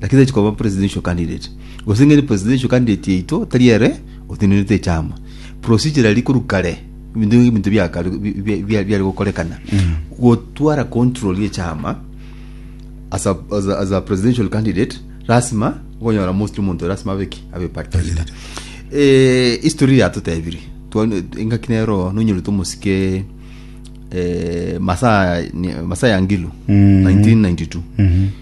Lakini tari chikoba presidential candidate. Gose ng'ende presidential candidate yaito tari ere otenenete echama. Procedure eri koru kare, ebinto ebi ebinto bia kare bi- bi- bi- biare gokorekana. Gotwara control y'echama as a, as a, as a presidential candidate lasima okonyora mostly omonto lasima abe ki abe party leader eh, history yatotebirie Twa- engaki nero nonyorete omosike eh, masaa ni- masaa ya ngilu 1992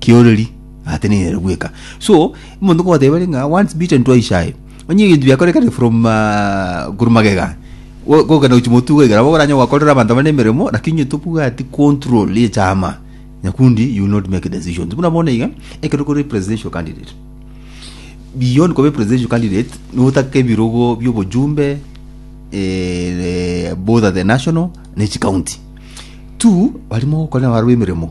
kioreri atenenerete bweka so omonto nkogoteba ere ng'a once beaten twice shy onye ebinto biakorekane from ah, korwa magega go- gokenda gochi motu goigera nabo oranye gwakorera abanto abande emeremo lakini onye tobwati control ye chama nyakundi you will not make decisions buna bono iga ekero kore presidential candidate beyond koba presidential candidate notake ebirogo biobojumbe eh, both at the national ne chicounty two barimo gokora nabarabu emeremo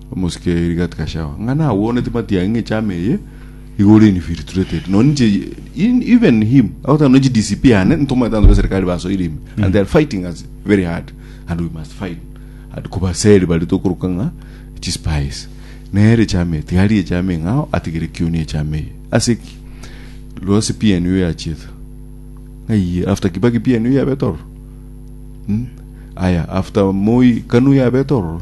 Omosike oye rigato gashawa ng'a nagweoneti matiang'i ng'a echama eye igoro infiltrated nonye inche in, even him agotaka nonye chidcp ane ntomanyete abanto b'eserikali basoire ime and they are fighting us very hard and we must fight and kobaseri baria tokoroka ng'a chispies nere echama eye tiga arie echama eng'ao atigere kioni echama eye ase ki lwase PNU yachiete ng'aiye after Kibaki PNU yabete ororo Hmm? aya after Moi kanu yabete ororo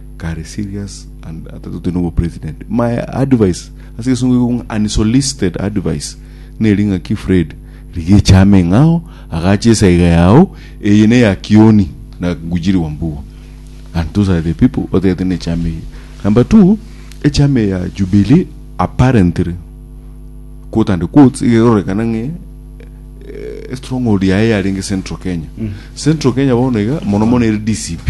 kare serious and atatoti nobo president my advice ase gesungu igo ng'a unsolicited advice neri ng'a ki Fred rigecha ameng'ao agache esaiga yao eye ne ya kioni na ngujiri wa mbugo and those are the people otagete ne chama eye number two echama ya jubilee apparently quote and quotes igerorekana ng'e eh, stronghold yaye yarenge central kenya mm. central kenya bono iga mono mono ere dcp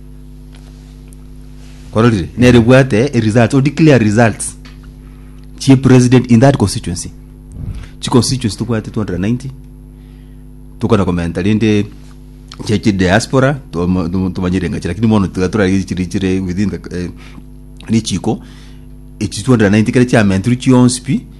kororire nere bwate e results o declare results chie president in that constituency chi constituency tobwate 290 tokona komenta rende chia chi diaspora tomo- tomo- tomanyire engachi lakini mono tiga torari chiri chire within the eh, richiko echi 290 kere chiamentirwe chionsi pi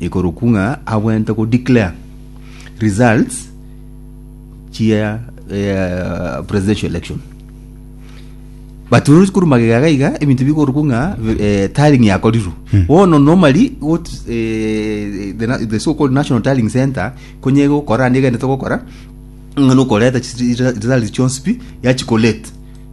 Ikorokwo ng'a abwente go declare results chia eh, presidential election but rori korwa magega iga iga ebinto bikorokwo ng'a eh, tallying yakorirwe bono normally got eh, the, na- the so called national tallying center konye gokora ande egende togokora ng'a nokoreta chi- chi- results chionsi pi yachikolate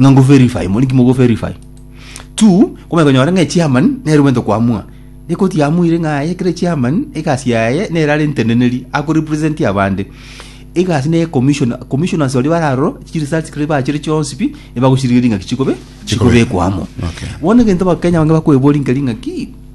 Ng'a ngoverify, mori ki mogoverify? Two, komanya konyora ng'a echiamani nere omanyete koamua. Ekoti yamuire ng'a aye ekero echiamani, egasi yaye nere are enteneneri, akorepresentia abande. Egasi neye commission, commissioners baria bare aroro, chiresults ekero bachire chionsi pi, nibagochirigeria ng'aki chikobe, Chikobe. chikobekwa amo. Okay. Bono egento abakenya abange bakoeboria nkeri ng'aki,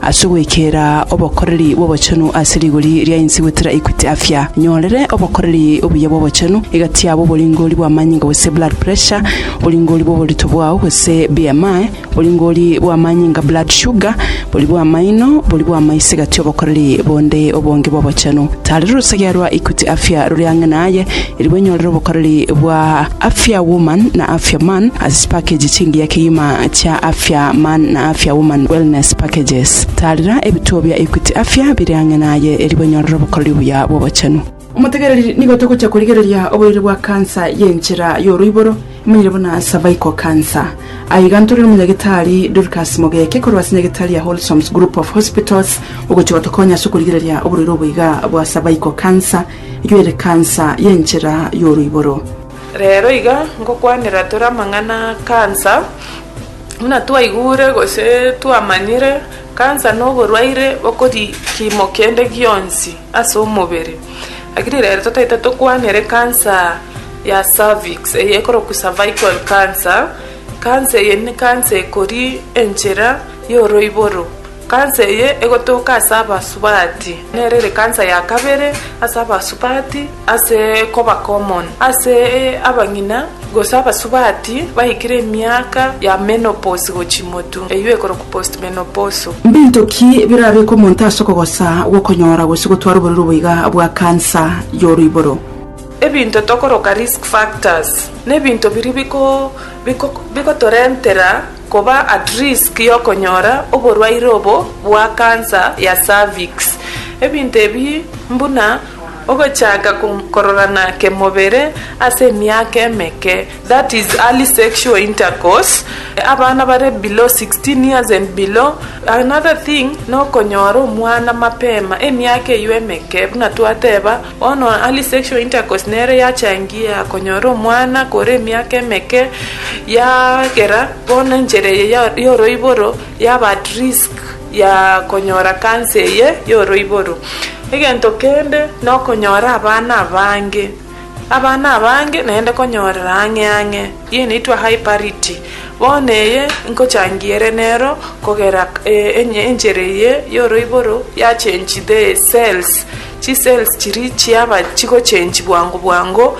Ase ogwekera obokoreri bw'obochenu ase rigori ria ense gwetera Equity Afya, nyorere obokoreri obuya bw'obochenu, egati yabo, oboringori bw'amanyinga gose blood pressure, oboringori bw'oborito bwao gose BMI, oboringori bw'amanyinga blood sugar, bori bw'amaino, bori bw'amaiso egati obokoreri bonde obonge bw'obochenu. Tarera orusagia rwa Equity Afya rore ang'e naye, erigwe nyorere obokoreri bwa. Afia Woman na Afia Man as zipackages chingiya kegima chia Afia Man na Afia Woman Wellness Packages. Taarera ebituo bia Equity Afia bire ang'e naye erio banyorere obokoreri obuya bw'obochenu. Omotegereri nigo togocha korigereria oborwaire bwa kansa y'enchera y'oroiboro, emanyire buna cervical cancer. Aiga ntore n'Omonyagetari Dorcas Mogeke korwa ase Nyagetari ya Wholesomes Group of Hospitals ogochia gotokonya ase okorigereria oborwaire obo iga bwa cervical cancer, y'erekansa y'enchera y'oroiboro. Reero iga ngokwanera tore amang'ana a kansa, buna twaigure gose twamanyire, kansa noborwaire bokori kiimo kende gionsi ase omobere. Lakini reero totaete tokwanere kansa ya cervix, eye ekorokwa cervical cancer, kansa eye nikansa ekori enchera y'oroiboro. Kansa eye egotoka ase Abasubati, nero ere kansa ya kabere ase Abasubati ase koba common ase abang'ina gose Abasubati baikire emiaka ya menopause gochia motu, eyio ekorokwa postmenopausal. Mbinto ki birabeke omonto ase okogosa gw'okonyora gose gotwara oborero boiga bwa kansa y'oroiboro? Ebinto tokoroka risk factors, nebinto biria bigotorentera Koba at risk y'okonyora oborwaire obo bwa cancer ya cervix. Ebinto ebi mbuna ogochaka kororana kemobere ase emiaka emeke, that is early sexual intercourse, abana bare below 16 years and below. Another thing nokonyora omwana mapema emiaka eyio emeke buna twateba Bono early sexual intercourse nero yachangia konyora omwana kore emiaka emeke, yagera bono enchera eye ya yoroiboro yaba at risk ya konyora cancer eye yoroiboro. Egento kende nokonyora abana abange, abana abange naende konyorera ang'e ang'e, eye enaitwa high parity, bono eye nkochangia ere nero kogera enchera eye yoroiboro ya change the cells. Chicells chiria chiaba chigochengi bwango bwango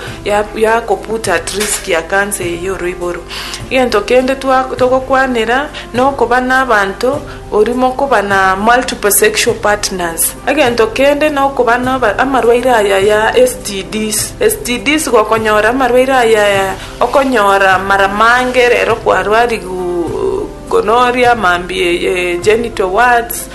yakobuta at risk ya cancer eye yoroiboro. Egento kende togokwanera nokoba nabanto oria mokoba na multiple sexual partners. Egento kende nokoba namarwaire aya ya STDs. STDs gokonyora amarwaire aya okonyora mara mange rero kwarwarigu gonorrhea, mambia eye genital wards.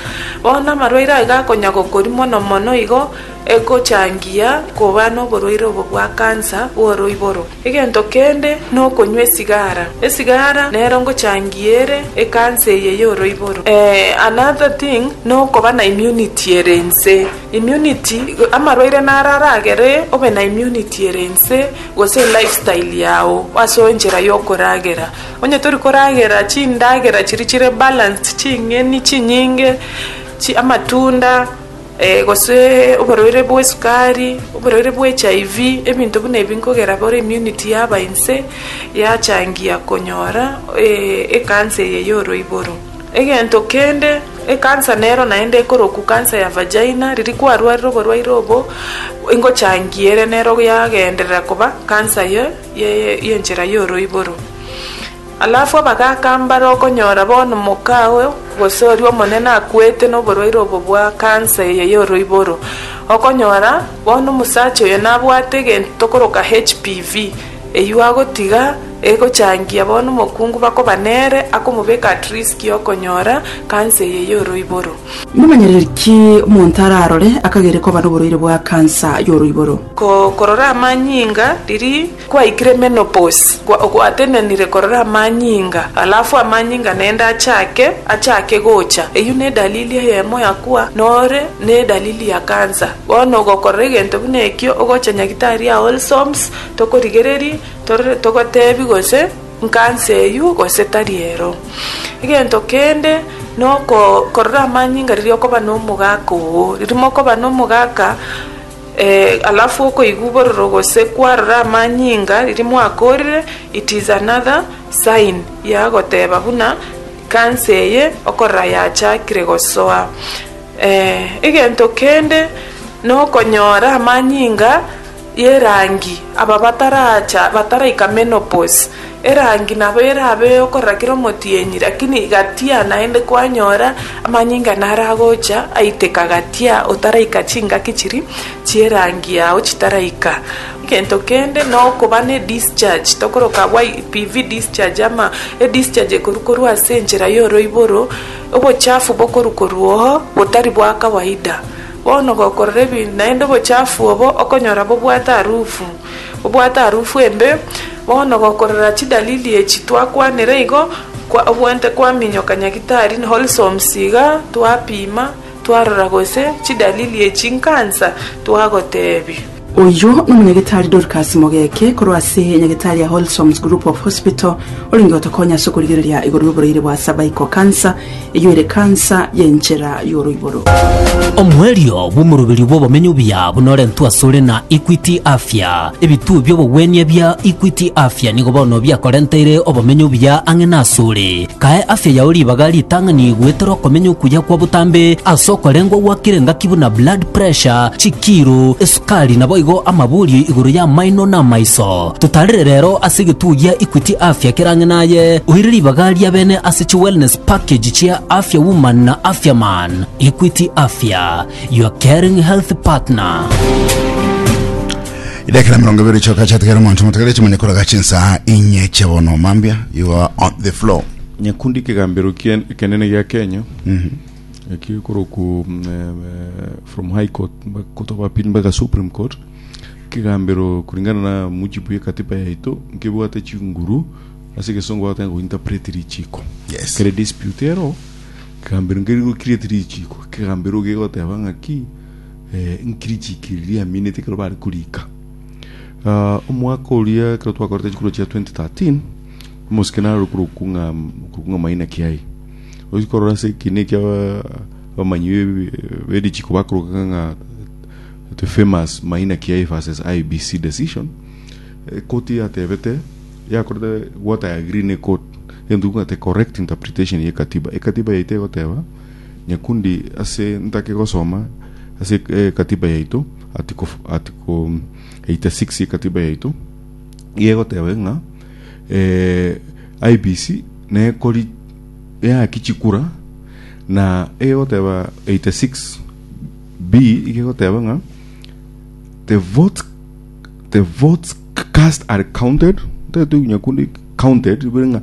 Bono amarwaire aye gakonya gokori mono mono igo egochangia koba noborwaire obo bwa kansa bw'oroiboro. Egento kende nokonywa esigara. Esigara nero ngochangia ere ekansa eye y'oroiboro. Another thing nokoba na immunity ere ense. Immunity amarwaire naro aragere obe na immunity ere ense gose lifestyle yao ase enchera y'okoragera. Onye tori koragera chindagera chiria chire balanced, ching'eni chinyinge, chi amatunda, eh, gose oborwaire bw'esukari, oborwaire bwa HIV, ebinto buna ebi nkogera bono immunity yaba inse, yachangia konyora eh, ekansa eye y'oroiboro. Egento kende, ekansa nero naende ekorokwa kansa ya vagina, riria kwarwarire oborwaire obo, engochangia ere nero yagenderera koba kansa ye y'enchera y'oroiboro. Alafu abagaaka mbare okonyora bono moka oo, gose oria omonene akwete noborwaire obo bwa kansa eye y'oroiboro, okonyora bono omosacha oyo nabwate egento tokoroka HPV, eyio agotiga egochangia bono omokungu bakoba nere, akomobeka at risk y'okonyora kansa eye y'oroiboro. Momanyereri ki omonto ararore akagere koba noborwaire bwa kansa y'oroiboro? Korora amanyinga riria kwaikire menopause, gwatenenire korora amanyinga, alafu amanyinga naende achake achake gocha. Eyio nedalili eyemo ya kuba nore nedalili ya kansa. Bono ogokorora egento buna ekio ogocha nyagitari Aolsoms tokorigererie torore togotebi gose Nkansa eyio gose tari ero. Egento kende noko korora amanyinga riria okoba nomogaka oo. Riria mokoba nomogaka alafu okoigwa obororo gose kwarora amanyinga riria mwakorire it is another sign yagoteba buna kansa eye okorora yachakire gosoa. Egento kende nokonyora amanyinga y'erangi, aba bataraacha bataraika menopause, erangi nabo erabe eyokorora kera omotienyi, lakini gatia naende kwanyora amanyinga naragocha aiteka gatia otaraika chingaki chiri chi'erangi yao chitaraika. Egento kende nokoba ne discharge tokoroka YPV discharge ama edischarge ekorwa korwa ase enchera y'oroiboro, obochafu bokorwa korwa oo botari bwa kawaida. Bono gokorora ebi, naende obochafu obo okonyora bobwate arufu, bobwate arufu embe. Bono gokorora chidalili echi twakwanire igo, kwa obwente kwaminyoka nyagitari Holsoms iga, twapima, twarora gose chidalili echi nkansa, twagotebi. Oyio n'Omonyagetari Dorcas Mogeke korwa ase Nyagetari ya Wholesomes Group of Hospital orenge gotokonya ase okorigereria igoro y'oboreire bwa cervical cancer, eyio ere cancer y'enchera y'oroiboro. Omoerio bw'omoroberio bw'obomenyo obuya bunorentwe asore na Equity Afya. Ebituo bi'obogwenia bia Equity Afya nigo bono biakorenteire obomenyo obuya ang'e nasore. Kae afya yao ribaga ritang'ani goetera okomenya okuya kwa botambe ase okorengwa gwakire ngaki buna blood pressure, chikiiro, esukari naboigo amaburio igoro y'amaino na amaiso. Totarire rero ase egetugo gia Equity Afya kera ang'e naye, oire ribaga riabene ase chi wellness package chia Afya Woman na Afya Man. Equity Afya, your caring health partner. idakira mirongo ibere choka chatigara omonto motigare chimani koraga chinsaha inye chia bono mambia you are on the floor nyakundi kegambero kien- ekenene gia kenya ekio ekoroku mm, eh, eh, from high court mba- court of appeal mpaka supreme court kegambero kuringana na mujibu ya katiba yaito nkebwate chinguru ase egesongo bagotanga gointerpret richiko Yes. kere dispute ero kegambero nkeri gokireti richiko kegambero gegoteba ng'aki eh, nkirichiki riria yaminete ekero bare korika Ah, omwaka oria ekero twakorete chikuro chia 2013 omosike naro korokung'a korokung'a maina kiaye ochi korora ase ekina ekia abamanyi be- berichiko bakoroka ng'a the famous maina kiaye versus ibc decision ekoti yatebete yakorete gwata ya green court egento ekobwate correct interpretation ye katiba ekatiba yaito egoteba nyakundi ase ntake gosoma ase ekatiba yaito article, article 86 ekatiba yaito iga egoteba ng'a eh, IBC nekori yaki chikura na iga egoteba 86 b iga egoteba ng'a the votes the votes cast are counted ntetu nyakundi counted bire ng'a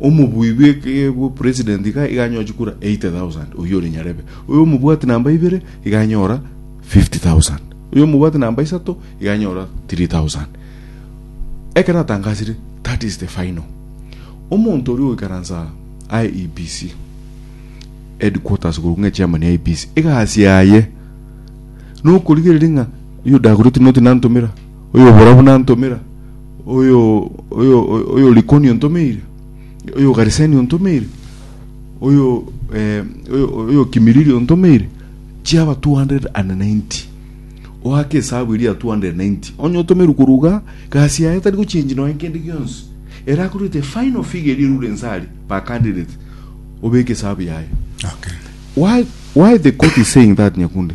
Omobui bwe president iga anyoe chikura 80,000, oyio ore nyarebe. Oyo omobwati namba ibere iga anyora 50,000. Oyo omobwati namba isato iga anyora 3,000. Eke natangasire, that is the final. Omonto oria oikaransa IEBC headquarters korwa ng'a chairman ya IEBC, egasi yaye nokorigereria ng'a oyo Dagoretti noti nantomera, oyo Oborabu nantomera, oyo oyo oyo Likoni ontomeire, oyo Gariseni ontomeire, oyo eh, oyo oyo Kimilili ontomeire, chiaba 290 oake esabu eria 290 onye otomerwe koruga gasi yaye tari gochenji noe kende gionsi era akorete final figure eria erure nsari per candidate obeke esabu yaye Okay. why why the court is saying that nyakunde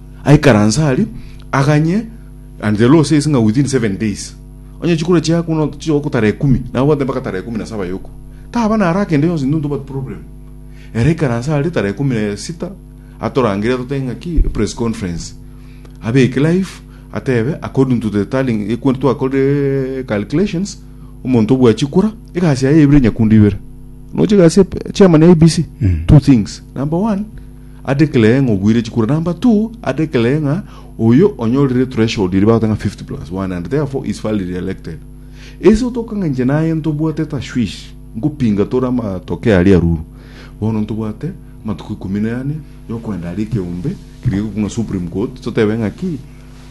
Aikaranse aria, aganye and the law says ng'a within seven days. Onye chikura chiaye kuna chichogokwa tara ekumi, nabo bwate mpaka tara ekumi na saba yoku. Taba naro akende yonsi ntuntu but problem. Ere aikaranse aria tara ekumi na sita atorangere atotebe ng'a ki press conference. Abeke life atebe according to the tallying ekwe twakorire calculations omonto obua chikura egasi yaye ebire nyakundu ibere. Noche egasi ya chairman ya IBC. Two things. Number one, Adeclare ng'a obweire chikura number two, adeclare ng'a oyo onyorire threshold eria bagoteba ng'a 50 plus 1 and therefore is validly elected. Ase otoka ng'a inche naye ntobwate tashwish ngopinga tore amatoke aria ruru. Bono ntobwate amatuko ikomi na ane yokoenda aria ekeombe keria gegoikwa ng'a supreme court totebe ng'a ki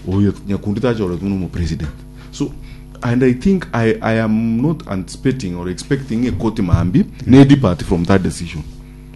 oyo nyakundi tachoretwe buna omopresident. So and I think I, I am not anticipating or expecting ekoti mambia ne depart from that decision.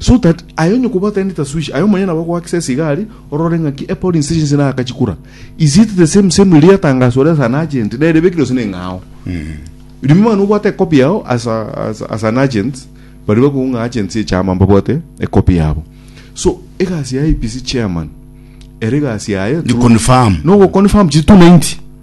So that aye onye kobwata rende tasuishi, aye omonyene nabo ogoakisa esigari, orore ng'aki e polling station ase nagaka chikura. Is it the same same riria yatangaswa ore ase an agent, nere ebekire gose neng'ao? Rimo mang'ana obwate ekopi yao as a, as, as an agent, baria bakoigwa ng'a agents echama mbabwate ekopi yabo. So egasi ya IEBC chairman, ere egasi yaye to- Ni confirm. no go confirm chi 290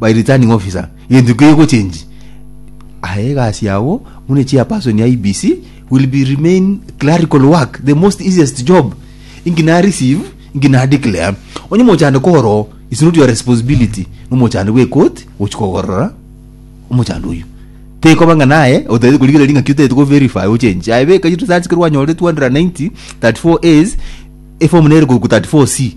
by returning officer egento ekio egochenji aye egasi yao buna chairperson ya IBC will be remain clerical work the most easiest job inki na receive inki na declare onye mochando koro is not your responsibility nomochando bwe court gochi kogorora omochando oyo tekoba ng'a naye otagete korigera ring'aki otagete ko verify ochenji aye beka returns korwa anyore 290 34 A's eform nere korwa 34 C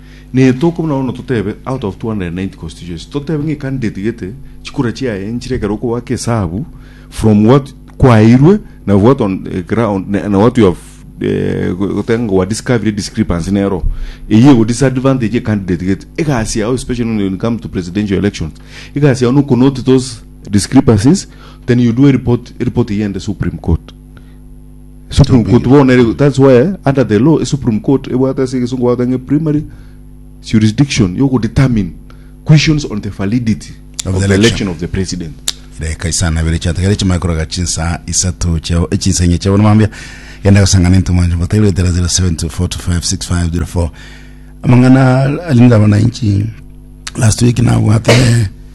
Ne tokobua na bono totebe out of 290 constituency totebe ng'a ecandidate gete chikura chiaye nchire ekero okobaka esabu from what kwaeirwe na what on the ground na na what you have eh, go- goteba ng'a wa discovery discrepancy nero eyio ego disadvantage ye candidate gete egasi yao especially when you come to presidential elections egasi yao nokonote those discrepancies then you do a report a report eyende supreme court Supreme Court Chitumbiri. bono ere that's why under the law Supreme Court ebwate ase egesungu bagoteba ng'a primary jurisdiction yo go determine questions on the validity Of of, the the election. election of the president. reka isano na ibere chiatagere chimanye koroka chinsa isato chiao echinsa inye chiao namambia genda gosangana into mwanjo mbotaire etera 0724256504 amang'ana alinda abananchi last week nabwate